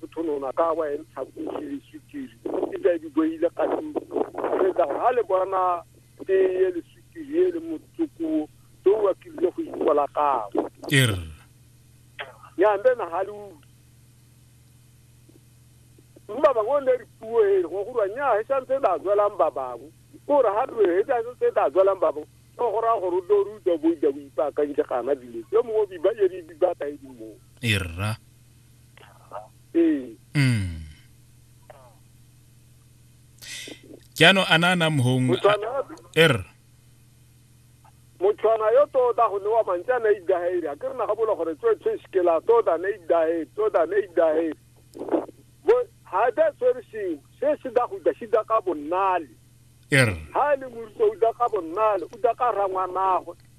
Thotholona ka wa entsha kusi sukiri e tla di boile ka tlung re tla ha le bona ke ye le sukiri ye le motsokuo to wa ke le go ikola ka er ya mbe na ha le u mba ba ngone re puo e go go nya he sa ntse da zwela mba ba go go re ha re he sa ntse da zwela mba ba go go ra go ru do ru do bo da bo ipaka nje kana dile yo mo bi ba ye bi ba ta e mo erra ee Mm. jaanong a na a na mong motshwana er motshwana yo tota go newa mantsi a na idahele a ke re naga bola gore tsoe tshwe sekela tota na idahele tota na idahele bo ha da tshwere sengwe se se da go da se da ka bonnale er ha e le moruta o da ka bonnale o da ka rangwanagwe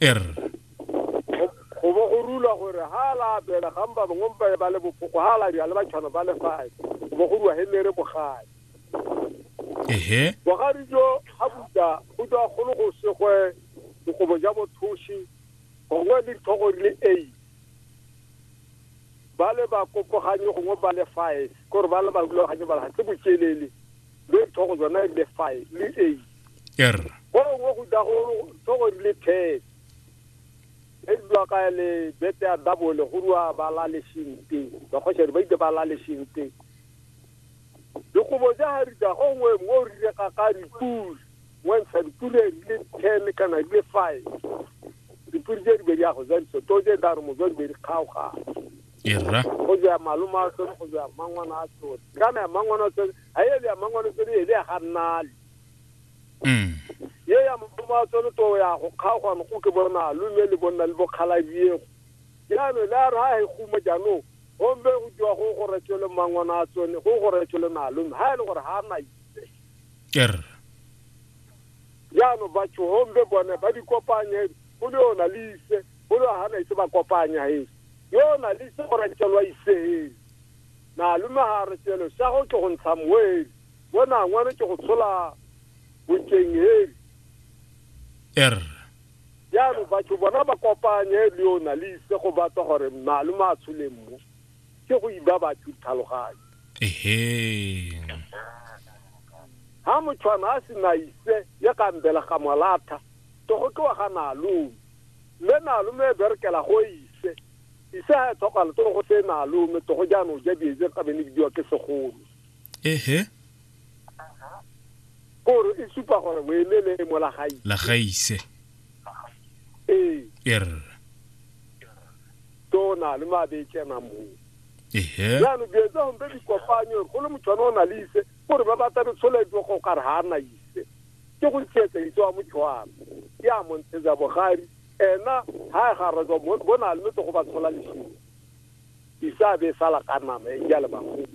er go bo go rula gore ha la apela ga mba bangwe mpa ba le bopoko ha la dira le batshwano ba lefae go bo go rua helere bogadi ehe bogadi jo ga buta go tswa golo go segwe dikobo ja bothoshi gongwe le dithogo di le eight ba le ba kopoganye gongwe ba le five kore ba le ba rulaganye ba le ga tse bokelele le dithogo tsona le five le eight er go gongwe go tla go tlhogo di le ten e dula ka le bete ya dabole go rua ba la lesinte bakgosere ba itse ba la lesinte dikobo ja ga rita go ngwe mo o rile ka ka dipule wentsha dipule di le ten kana di le five dipule je dibedi ya go ja ditso to je daro mo jo dibedi kgaoga erra go ja maloma a tsone go ja mangwana a tsone kana ya mangwana a tsone a ele ya mangwana a tsone ele ya ga nnale Mm. ye ya madumo a tsone to ya go kgaogano go ke bona lome le bonna le bokgalabiego jaanong le a re ha e guma jaanong gombe go diwa go go retšele mangwana a tsone go go retšele nalome ha e le gore ga a na er jaanong batho gombe bone ba di kopanye go le yona le ise go le ga na ise ba kopanya e yona le ise go retšelwa isee nalome ga a retšele sa go ke go ntsha moe Bona ngwano ke go tshola bokeng heli. Er. Jaanong batho bona ba kopanye le yona le ise go batla gore malome a tshole mmo ke go iba batho ditlhaloganyo. Ehe. Ha motshwana a se na ise ya ka mbela ga molatha to go tloa ga nalome. Mme nalome e berekela go ise. Ise ha e tlhokala to go se nalome to go jaanong ja dietse ka bene bidiwa ke segolo. ehe kore e supa gore o eme le mo la gaise la gaise ee er tona le mabe tsena mo ehe jaanong dilo tsa gompe dikopanyo go le motho one o na le ise gore ba batla re tsholetso go kare ga a na ise ke go ntsietsa itse wa mothoana ke a montshetsa bogari ena ga e garetswa bona le metse go ba tshola lesimo isa be e sala ka nama e ja le bagolo